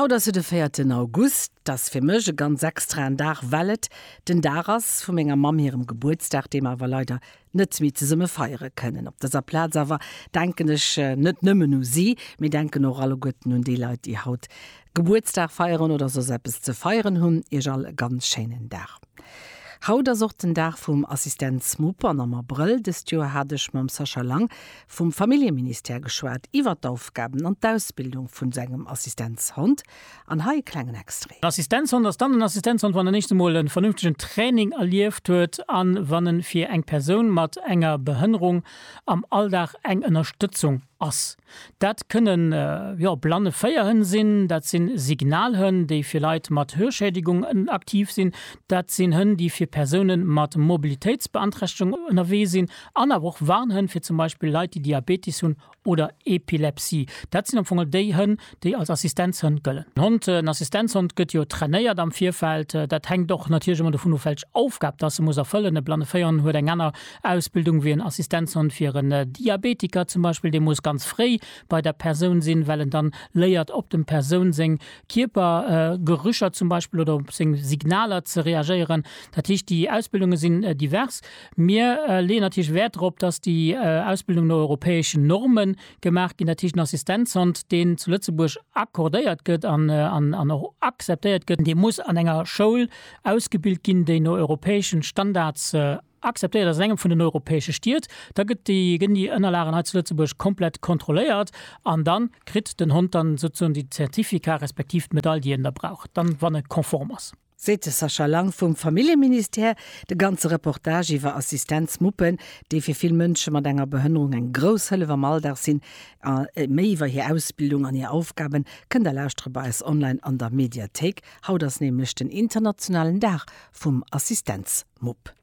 Haut ass jo de véierten August. Dat ass fir mech e ganz extraen Dag, well et den Dag ass vu menger Mamm hirem Gebuertsdag, dee mer awer leider net méi zesumme feiere kënnen. Op dëser Plaz awer denken ech net nëmmen u si, mee denken och alleguerten un déi Leit, déi haut Gebuertsdag feieren oder soss eppes ze feieren hunn. Iech all e ganz schéinen Dag. Haut ass och den Dag vum Assistenzmupp an am Abrëll dëst Joer hat ech mam Sascha Lang vum Familljeministère geschwat iwwert d'Aufgaben an d'Ausbildung vun sengem Assistenzhond an hei e klengen Extrait. En Assistenzhond ass dann en Assistenzhond, wann en éischt emol e vernünftegen Training erlieft huet an wann en fir eng Persoun mat enger Behënnerung am Alldag eng Ënnerstëtzung ass. Dat kënnen, jo, blanne Féierhënn sinn, dat si Signalhënn, déi fir Leit mat Hörschädigung aktiv sinn, dat sinn Hënn, déi fir Persounen mat Mobilitéitsbeanträchtegung ënnerwee sinn, An awer och Warnhënn fir zum Beispill Leit, déi Diabeetes hunn oder Epilepsie. Dat sinn am Fong déi Hënn, déi als Assistenzhënn gëllen. En Hond, en Assistenzhond gëtt jo trainéiert am Virfeld. Dat hänkt och natierlech ëmmer dovun of, welch Aufgab dass e muss erfëllen. E blanne Véihonn huet eng aner Ausbildung wéi en Assistenzhond. Fir en Diabetiker zum Beispill, dee muss ganz fréi bei der Persoun sinn, well en dann léiert op dem Persoun seng Kierpergerücher zum Beispill oder op seng Signaler ze reagéieren. Dat heescht, déi Ausbildunge sinn divers. Mir leeën natierlech Wäert drop, dass déi Ausbildungen no europäeschen Norme gemaach ginn. Dat heescht, den Assistenzhond, deen zu Lëtzebuerg accordéiert gëtt an och akzeptéiert gëtt, dee muss an enger Schoul ausgebilt ginn, déi no europäesche Standards akzeptéiert ass, an engem vun den europäesche Stied. Da gëtten déi Ënnerlagen hei zu Lëtzebuerg komplett kontrolléiert an da kritt den Hond dann souzesoen de Certificat respektiv d'Medaille, déi en da brauch dann, wann e konform ass. seet de Sascha Lang vum Familljeministère. De ganze Reportage iwwer Assistenzmuppen, déi fir vill Mënsche mat enger Behënnerung eng grouss Hëllef am Alldag sinn, a méi iwwer hir Ausbildung an hir Aufgaben, kënnt der lauschtere bei eis online an der Mediathéik. Haut ass nämlech den internationalen Dag vum Assistenzmupp.